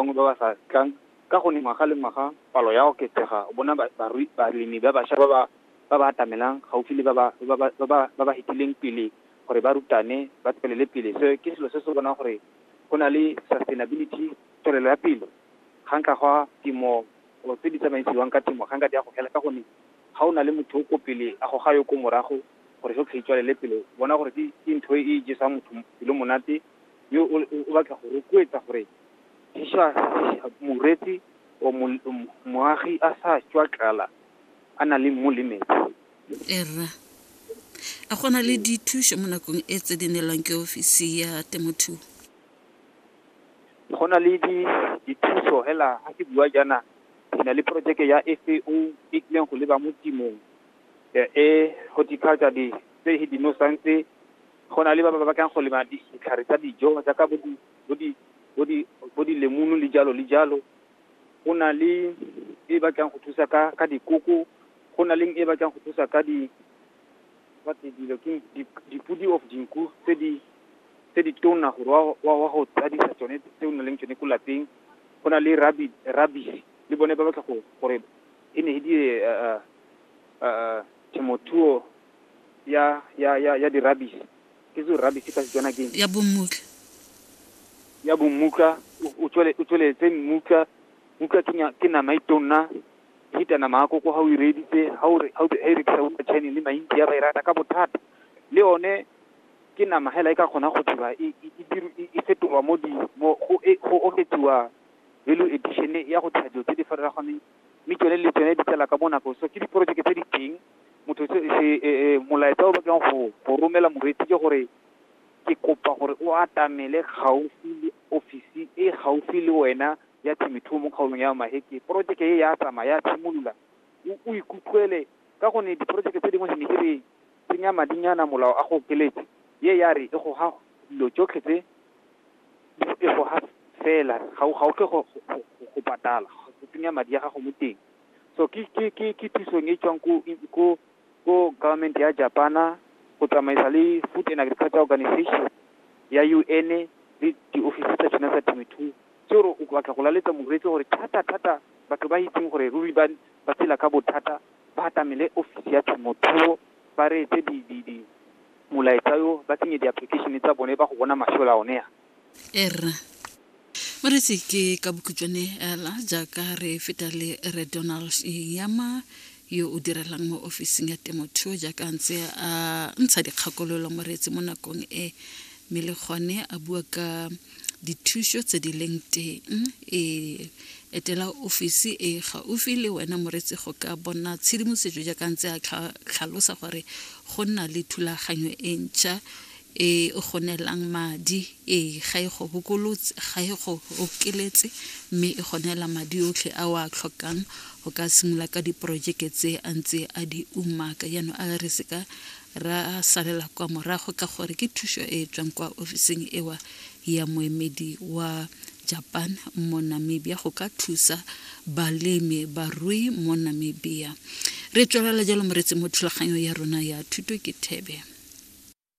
bangwe ba ba sa tlang ka go ne ngwaga le ngwaga palo ya oketsega bona balemi ba basha ba ba atamelang gaufi le ba ba hetileng pele gore ba rutane ba tswelele pele se ke selo se se bonang gore go na le sustainability tswelelo ya pele ga nka gwa temo o tse di tsamaisiwang ka temo ga nka di a go fela ka gone ga o na le motho o ko pele a go ga yo ko morago gore go tlhaitswalele pele bona gore ke ntho e jesang motho pelo monate yo o batla go rotloetsa gore morwetse, o mol- o mo- moagi a sa tswa tlala, a na le mmu le metsi. e rra a gona le dithuso mo nakong e tse di neelwang ke ofisi ya temothuo Go na le di, dithuso hela, ha ke bua jaana, ke na le projeke ya FAO e tlileng go leba mo tshimong, eh, e horticulture di, tse he dinosang tse, go na le ba ba batlang go lema ditlhare tsa dijo, jaaka bo di- bo di, bo di, bo dilemunu le jalo le jalo. Go na le e e batlang go thusa ka, ka dikoko, go na leng e e batlang go thusa ka di, ba tse dilo keng, di, dipodi of dinku tse di, tse di tona gore wa, wa, wa go tsadisa tsone tse o nang le tsone ko lapeng. Go na le rabi-, rabisi, le bone ba batla go, gore e ne e di temothuo ya, ya, ya, ya di-rabisi. Ke zo rabbit ka Setswana ke eng? Ya bommutla. Ya bommutla, o tsweletse mmutla. Mmutla ke nama e tonna, e feta nama ya koko ha o e reeditse. Ha o re, ha e rekisa bo ma China le ma-India ba e rata ka bothata. Le yone ke nama hela e ka kgonang go dira, e fetolwa mo di, go oketsiwa value addition ya go dira dilo tse di farologaneng. mme tsone le tsone di tsela ka bonako so ke diporojeke tse di teng motho se se- e- e, molaetsa o batlang go go romela moreetsi ke gore ke kopa gore o atamele gaufi le ofisi e gaufi le wena ya temothuo mo kgaolong ya maheke porojeke e ya tsamaya ya tshimolola o- o ikutlwele ka gonne diporojeke tse dingwe ne ke re tsenya madinyana molao a go okeletse ye ya re e go ha dilo tsotlhe tse dipego ga fela ga o ga o tle go go- go- go- go patala go tsenya madi a gago mo teng so ke ke ke ke thusong e tswang ko ko ko government ya Japana go tsamaisa le Food and Agriculture Organization ya UN le diofisi tsa tsona tsa temothuo tse gore o batla go laletsa moreetsi gore thata thata batho ba itseng gore ruri ba ba tshela ka bothata ba atamele ofisi ya thomothuo, ba reetse di, di, di, molaetsa yo, ba tsenye di-application tsa bone ba go bona mašola one a. E rra. Moretsi ke ka bokhutšwane ela jaaka re feta le re Donald Yama yo o direlang mo ofising ya temothuo jaaka a ntse a ntsha dikgakololo moretsi mo nakong e mme le gone a bua ka dithušo tse di leng teng e etela ofisi e gaufi le wena moretsi go ka bona tshedimosetso jaaka ntse a tlhalosa gore go nna le thulaganyo e ntšha e go neelang madi e ga e go bokolotse ga e go okeletse mme e go neela madi otlhe a o a tlhokang go ka simolola ka diporojeke tse a ntse a di umaka jaanong a re seka ra salela kwa morago ka gore ke thuso e e tswang kwa ofising ewa ya moemedi wa japan mo namibia go ka thusa balemi barui mo namibia re tswelela jalo moretsi mo thulaganyong ya rona ya thuto ke thebe